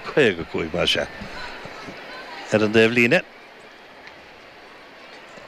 55 mar sea. Ar an dtaobhlíne,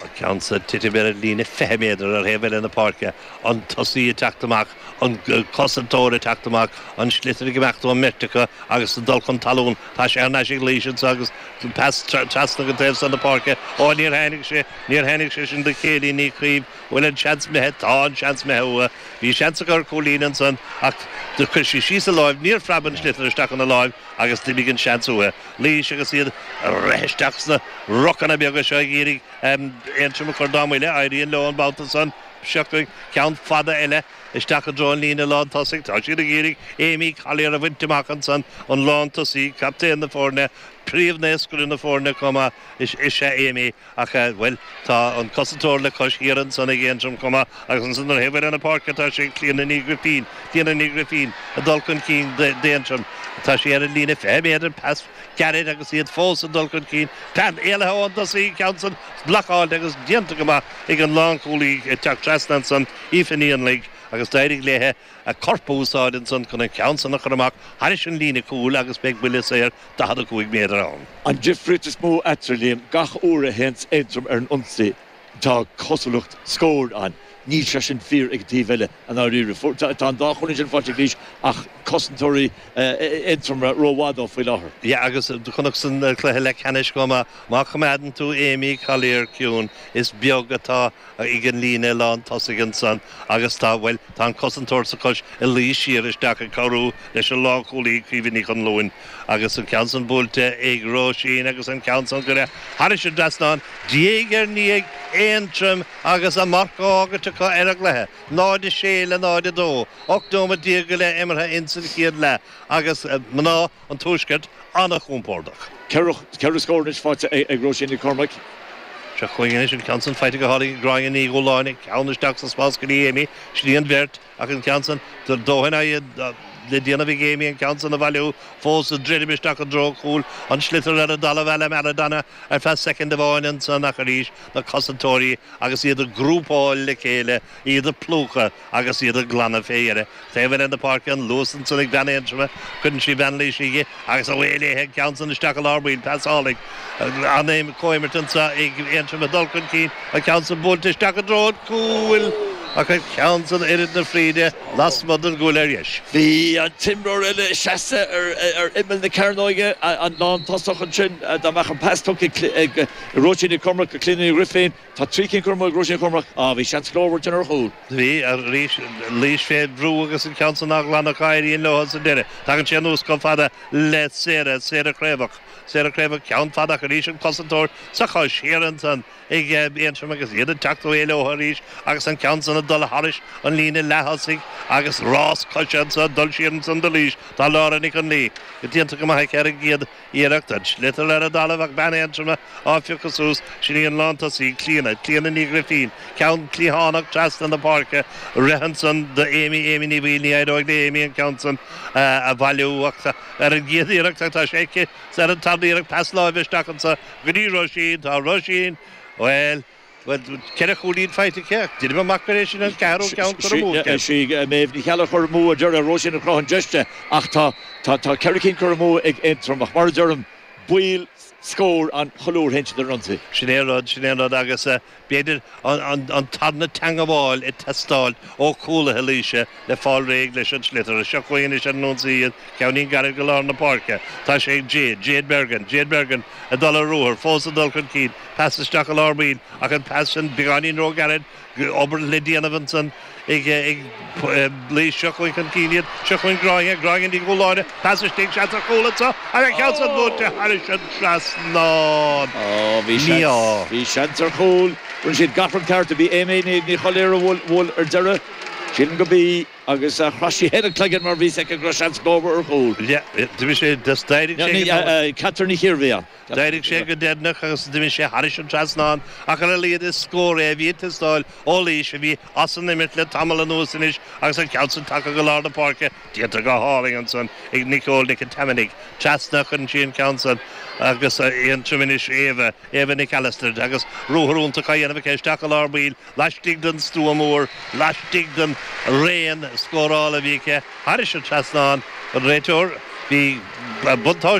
an ceann san ag titim ar an líne 20 méadar ar thaobh eile na páirce, an tosaí ag teacht amach, an cosantóir ag teacht amach, an sliotar ag imeacht ón mbeirt acu agus ag dul chun talún. Tá sé thar n-ais ag Laois iontach agus trasna go dtí an taobh san na páirce. Ó, níor tháinig sé, níor tháinig sé sin do Chéilí Ní Chaoimh. Bhuel an seans imithe, tá an seans imithe uaithi, bhí seans aici ar chúilín ansan ach chuir sí síos a lámh, níor phreab an sliotar isteach ina láimh agus d'imigh an seans uaithi. Laois agus iad ag rith isteach sna rucanna beaga seo ag iarraidh Aontroim a chur dá mbuille, éiríonn leo an babhta san, seo ceann fada eile isteach i dtreo an líne lántosaigh, tá siad ag iarraidh Amy Collier a bhaint amach ansan, an lántosaí, captaen na foirne, príomhscórálaí na foirne chomh maith is ea Amy. Ach, bhuel, tá an cosantóir le cois thiar ansan ag Aontroim chomh maith agus ansan ar thaobh eile na páirce tá sé ag Clíona Ní Ghrifín, Clíona Ní Ghrifín ag dul chun cinn d'Aontroim. Tá sí ar an líne 20 méadar, pas gairid agus iad fós ag dul chun cinn. Tá sí éalaithe ón dtosaí, an ceann san blocáilte agus déanta go maith ag an lánchúlaí ag teacht trasna ansan, Aoife Ní Annaigh, agus d'éirigh léithe. a corp a úsáid ansan chun an ceann san a chur amach thairis an líne chúil agus beidh buille saor 45 méadar ann. An difríocht is mó eatarthu, Liam, gach uair a théanns Aontroim ar an ionsaí tá cosúlacht scóir ann. Níl sé sin fíor ag an taobh eile, i ndáiríre. Tá an dá chúilín sin faighte ag Laois ach cosantóirí Aontroma ró-mhaith dóibh faoi láthair. Yeah agus do chonac sa chluiche leathcheannais chomh maith, má choimeádann tú Amy Collier ciúin, is beag atá ag an líne lán tosaigh ansan agus tá, bhuel, tá an cosantóir sa bhreis ag luí siar isteach ag cabhrú leis an lánchúlaí, Caoimhe Ní Chonluain, agus an ceann san buailte ag Róisín agus an ceann san curtha thairis an dtrasnán, diaidh ar ndiaidh, Aontroim agus a marc á fhágaint acu ar an gcluiche, 0, 6 le 0, 2. Ocht nóiméad déag go leith imeartha ins an chéad leath agus mná. an Tuaiscirt an-chompordach. Ceithre scór anois faighte ag Róisín Nic Cormaic. Seo chugainn anois an ceann san faighte go hálainn ag Gráinne Ní Dhúláin, an ceann isteach sa spás go dtí Amy. Sin í an bheirt, ach an ceann san, tá a dóthain le déanamh ag Amy an ceann san a bhailiú fós, ag druidim isteach i dtreo an chúil, an sliotar ar an dtalamh, à la Maradona ar feadh soicind amháin ansan ach arís na cosantóirí agus iad ag grúpáil le chéile, iad ag plúchadh. agus iad ag glanadh fé dheireadh go dtí an taobh eile na páirce, an luas ansan ag bean Aontroma, cuireann sí bean Laoise di agus away léithe an ceann san isteach i lár baill, pas álainn, an comhimirt anso ag Aontroim ag dul chun cinn, an ceann san buailte isteach i dtreo an chúil ach an ceann san oiread na fríde lasmuigh den gcúl ar dheis. Bhí an t-imreoir eile seasta ar imeall na cearnóige, an lántosaí ansin, dá mbeadh an pas tugtha ag Róisín Nic Cormaic go Cliodhna Ní Ghrifín, Tá trí cinn curtha amú ag Róisín Chormaic, á. Bhí seans glórmhar ansan ar chúl. Bhí, arís. Laois fé bhrú agus an ceann san á ghlanadh acu éiríonn leotha sa deireadh. Tagann sé anuas chomh fada le Sarah, Sarah Creabhach. Sarah Creabhach, ceann fada ach arís an cosantóir sa chois thiar ansan ag Aontroim agus iad ag teacht uaidh leotha arís agus an ceann san ag dul tharais an líne leath-thosaigh agus rás coise anso ag dul siar ansan do Laois. Tá Laura Nic Fhionnlaoich déanta go maith aici ar an gcéad iarracht an sliotar ar an dtalamh ach bean Aontroma á phiocadh suas, sin í an lántosaí, Clíona, Clíona Ní Ghrifín, ceann cliathánach trasna na páirce, rith ansan do Amy, Amy Ní Bhaoill, ní éireoidh le Amy an ceann san a bhailiú ach ar an gcéad iarracht ach tá sé aici, is ar an tarna iarracht, pas láimhe isteach anso go dtí Róisín, tá Róisín, bhuel. Bhuel, ceithre chúilín faighte aici. Déanaim amach gurb é sin an ceathrú ceann curtha amú aici. Is í Méabh Ní Cheallaigh a chuir amú, a deir Róisín a chruthaigh an deis di, ach tá ceithre cinn curtha amú ag Aontroim. Ach mar a deirim, baol scór ann chuile uair a théann siad ar ionsaí. Sin é an rud, sin é an rud agus b'fhéidir an tarna teangabháil ag teastáil ó chúlaithe Laoise. le fáil réidh leis an sliotar. Seo chugainn anois ar ionsaí iad, ceann gairid go lár na páirce. Tá sé ag Jade, Jade Bergin, Jade Bergin ag dul ar ruathar, fós ag dul chun cinn, pas isteach i lár baill ach an pas sin beagáinín ró gairid, obair le déanamh ansan ag Laois, seo chugainn chun cinn iad, seo chugainn Gráinne, Gráinne Ní Dhúshláine, pas istigh, seans ar chúl anseo ach an ceann san buailte thairis an trasnán, á. Bhí seans ar chúl, rinne siad gach rud ceart, b'í Aimée Ní Choiléir a bhuail ar deireadh. Sílim gurb í, agus chroith sí féin a cloigeann mar bhí 's aici go raibh seans mhór ar chúl. Leath, d'imigh sé, thus d'éirigh sé go deireanach. Ní, Catherine Ní Chiarmhiana. D'éirigh sé go deireanach agus d'imigh sé thairis an trasnán, ach ar a laghad is scór é a bhí ag teastáil ó Laois a bhí as an imirt le tamall anuas anois agus an ceann sin tagtha go lár na páirce déanta go hálainn ansan ag Nicole Nic an Tiompánaigh. Trasna a chuireann sí an ceann san agus Aontroim anois, Éabha, Éabha Nic Alastair agus ruathar iontach á dhéanamh aici isteach i lár baill laistigh den stua mór, laistigh den raon scórála a bhí aici thairis an trasnán, an réiteoir. Bhí buntáiste.